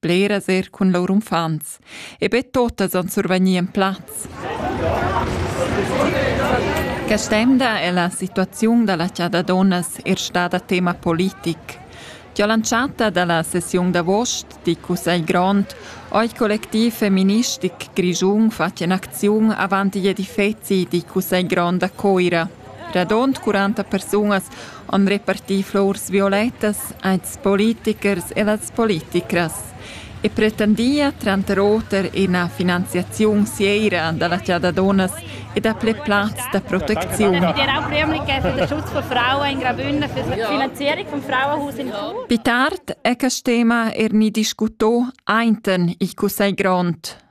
bleras er cun lur uffants, e be totas han survegnì en plaz. Quest'emda è la situaziun da la chada donnas er stada tema politic. Già lanciata dalla sessiun d'avost di Cussegl Grond oi collectiv feministic Grischun fatg in acziun avant gli edifezi di Cussegl Grond a Coira – Radund quaranta persunas han repartì flurs violettas als politichers e las politichras e pretendia tranter oter ina finanziaziun seira da la chasa dunnas e dapli plazs da protecziun. Pittard è quest tema er ni discutà ainten il cussegl grond.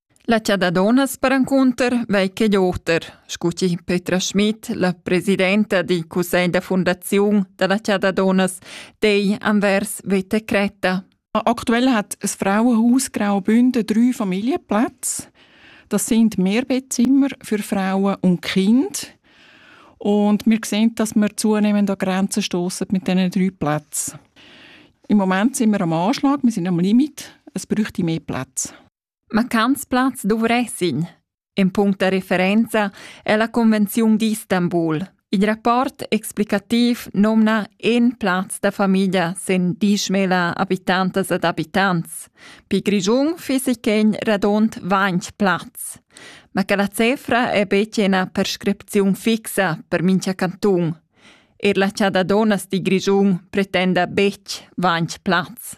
La chada dunnas perencunter vei ch'igl oter, scu chi Petra Schmidt, la presidenta dil cussegl da fundaziun dalla chada dunnas, dei anvers veta Creta. Aktuell hat ein Frauenhaus Graubünden drei Familienplätze. Das sind Mehrbettzimmer für Frauen und Kinder. Und wir sehen, dass wir zunehmend an Grenzen stoßen mit diesen drei Plätzen. Im Moment sind wir am Anschlag, wir sind am Limit, es bräuchte mehr Plätze. Ma quants plazs dovressin? In punct da referenza è la Convenziun d'Istanbul. Il rapport explicativ nomna in plaz da famiglia sen dieschmila habitantas ed abitants. Pi Grischun fissi quen radund ventg plazs. Ma che la cefra è betg ina prescripziun fixa per mincha cantun. Er la Chada Donas di Grischun pretenda betg ventg plazs.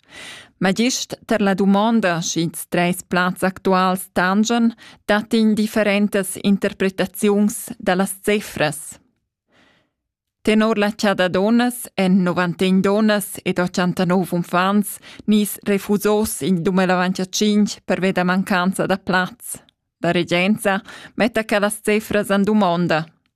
Ma gist tar la dumonda sch'ils trais plazs actuals tangian, dat indifferentas interpretaziuns da las cifras. Tenor la chada donnas èn 91 donnas ed 89 uffants nis refusos in 2025 pervia da mancanza da plaz. La regenza metta quellas cifras en dumonda.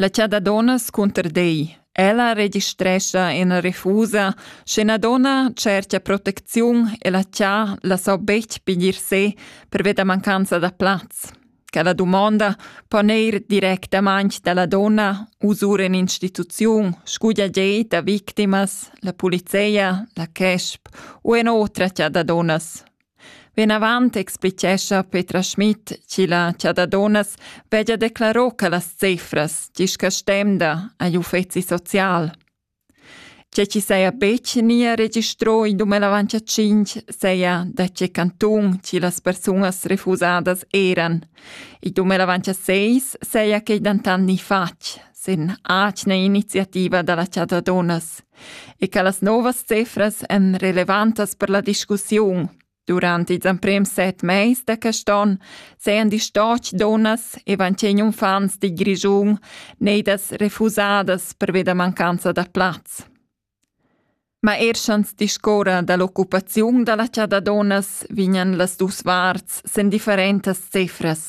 La cha da dunnas cunter dei. Ella registrescha ina refusa, sche ina donna tschercha protecziun e la cha la sa betg piglier se perveda mancanza da plaz. Quella dumonda po neir directamaing dalla donna usur in instituziun, scuglia gei da victimas, la polizia, la CESP u en otra cha da dunnas. Vinavant explichescha Petra Schmid chi la chadadonas veggia declaro che las cefras discastemda agl uffeci social. Tge chi saja betg nia registro in 2005 saja da tge cantun chi las persunas refusadas eran. In 2006 saja quei dentant ni fatg, sin atgna iniziativa da la chadadonas e che las novas cifras èn relevantas per la discussiun. Durant ils emprims set mais da quest onn sajan distocch dunnas e vancin uffants di Grischun neidas refusadas pervi da mancanza da plaz. Ma er sch'ans discuorra da l'occupaziun da la chasa da dunnas vegnan las duos varts sen differentas cifras.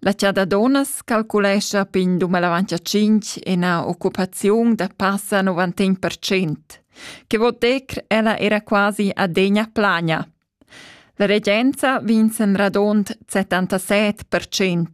La chasa da dunnas calculescha pin dumellavant tschinch ina occupaziun da passa novantin per cent, che vo dir ella era quasi adegna plagna. La regenza vinz en radund 77 per cent.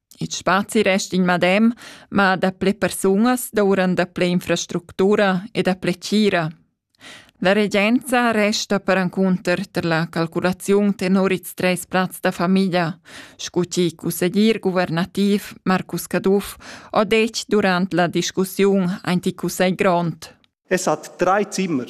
Il spazi resta il medem, ma daplè persunas douran daplè infrastructura e daplè tgira. La regenza resta perencunter tar la calculaziun tenor ils treis plazs da famiglia, sco ti cusseglier guvernativ Marcus Caduff ho detg durant la discussiun aint il cussegl grond. Es hat drei Zimmer.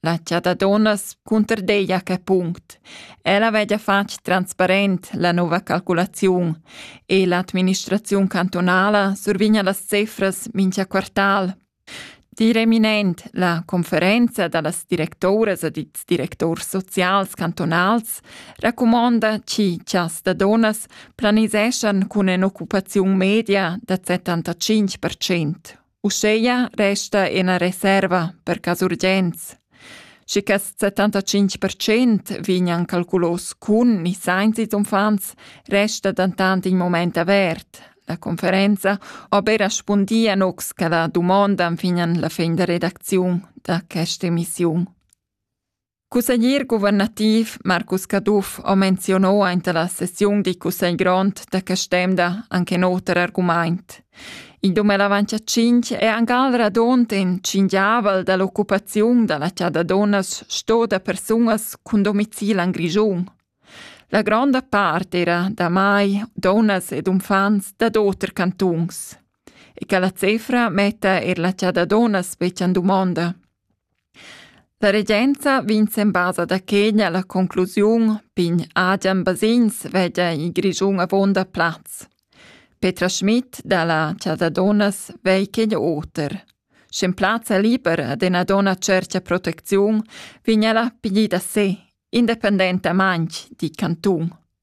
La tia da dunnas cunterdegia quei punct. Ella vegia fatg transparent la nova calculaziun e l'administraziun cantunala survigna las cefras mincha quartal. Dir eminent la conferenza da las directoras ed ils directors socials cantunals racumonda chi chas da donas planiseschan cun ün'occupaziun media da 75%. Uscheia resta ena reserva per cas urgenz. Schi quest 75% vignan calculos cun ni sainz ils uffants, resta dentant in moment avert. La conferenza aber respundia nox che la dumonda fin la fin da redacziun da questa emissiun. Cusseglier guvernativ Marcus Caduff ha menzionò aint la sessiun di cussegl grond da quest'emda anche in oter argumaint. In 2025 è angal radont in cingiavel dall'occupaziun dalla chada donnas sto da persunas cun domicil en Grischun. La gronda part era da mai donnas ed unfants dad oter cantuns. E che la cefra metta er la chada donnas betg en dumonda. La regenza vegn sen basa da Kenya la conclusiun pign Adrian Basins vegia in Grischun avonda plaz. Petra Schmidt dalla Chasa Donas vei Kenya oter. Schen plazza liber ad ena donna cercia protecziun, vigna la pigli da se, independenta manch, di Cantun.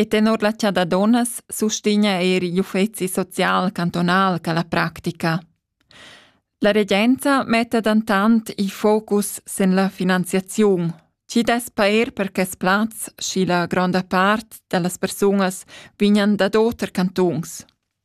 E tenor la chasa da dunnas sustegna er igl uffeci social cantunal quella practica. La regenza metta dentant il focus sin la finanziaziun, chi dess pair per quest plaz, schi la gronda part da las persunas vignan dad oter cantuns.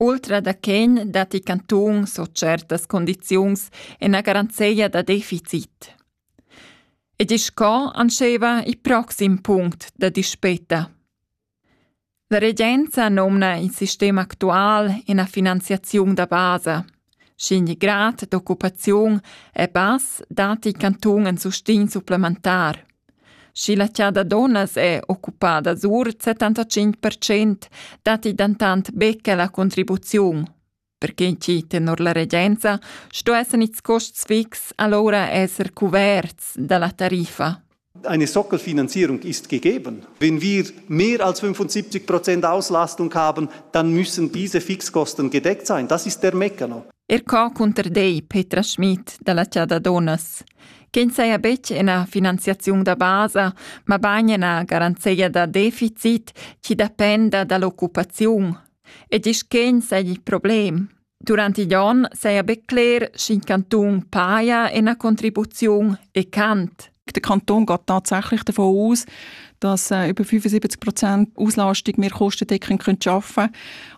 Ultra da quen datti cantuns o tschertas condiziuns ena garanzeia da deficit. Ed isch co antscheva il proxim punct da dispeta. La regenza nomna il sistem actual ena finanziaziun da basa – Sch'in grad d'occupaziun è bass, datti il cantun in sustegn supplementar. Sch'il atgna da dunnas è occupada sur il 75 percent, datti dentant be quella contribuziun. Per quai chi tenor la regenza sto esser its costs fix alura esser cuverts da la tariffa. eine Sockelfinanzierung ist gegeben. Wenn wir mehr als 75 Prozent Auslastung haben, dann müssen diese Fixkosten gedeckt sein. Das ist der Meccano. Er ca cunter dei Petra Schmidt dalla Ciada Donas, che saja betg ina finanziaziun da basa, ma bagn ina garanzia da deficit chi dependa dall'occupaziun e disch che sagli problem. Durant igl onn seia be cler sch'in Kanton paia ena Contribuziun e cant. Der Kanton geht tatsächlich davon aus, dass äh, über 75 Prozent Auslastung wir kostendeckend können arbeiten können.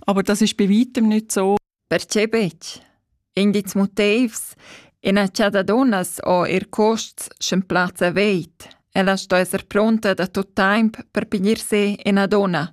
Aber das ist bei weitem nicht so. Perché betg? Indizs motivs ina ciadadunas o ir costs sch'en plazza veit. Ella sto esser pronta da tot temp per piglier se ina donna.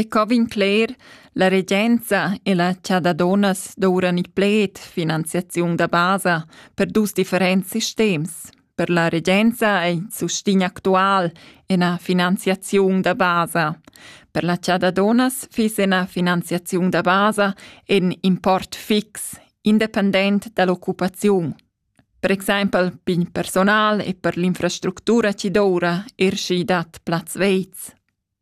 E co vegn cler, la regenza e la cha da dunnas douran il pled finanziaziun da basa per dus differents sistems. Per la regenza è il sustegn actual ina finanziaziun da basa. Per la cha da dunnas fiss ina finanziaziun da basa in import fix, independent dall'occupaziun. Per exempel per personal e per l'infrastruttura ci doura er schi dat plaz veiz.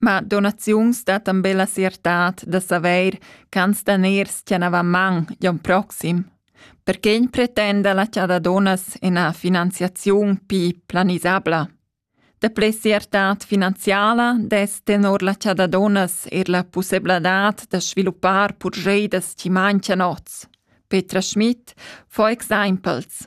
Ma donaziuns dattan be la siertad da savair ch'ans daners tganavan man l'on proxim. Perché pretenda la cha da donas ina finanziaziun pli planisabla? Daplè siertad finanziala dess tenor la cha da donas eir la pussebladad da sviluppar purscheidas chi manchian oz. Petra Schmidt fa exaimpels.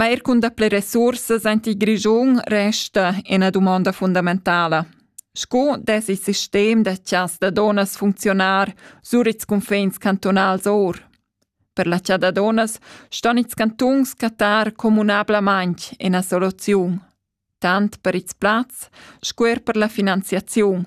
Ma eir cun daplè resursas aint il Grischun resta üna dumonda fundamentala. Sco dess il sistem da chas da donnas funcziunar sur ils cunfins cantunals our? Per la cha da donnas ston ils cantuns cattar communablamaing üna soluziun, tant per ils plazs sco eir per la finanziaziun.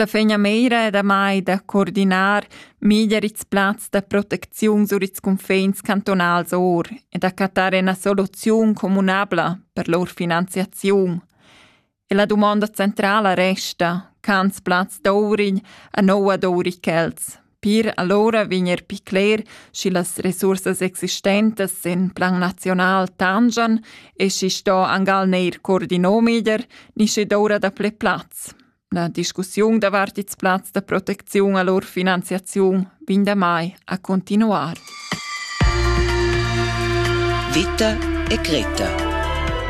La fegnameira è damai da coordinar meglier ils plazs da protecziun sur ils cunfins cantonals or e da cattar ina soluziun communabla per lur finanziaziun. E la dumonda centrala resta, cans plaz d'ourign a noua d'ourichels. Pir allora vegner pi cler, schi las resursas existentes in plan nazional tangian e schi sto angal neir coordino meglier, ni schi doura da ple plaz. La discussiun davart ils plazs da protecziun a lur finanziaziun vegn damai a continuar. Vita e Greta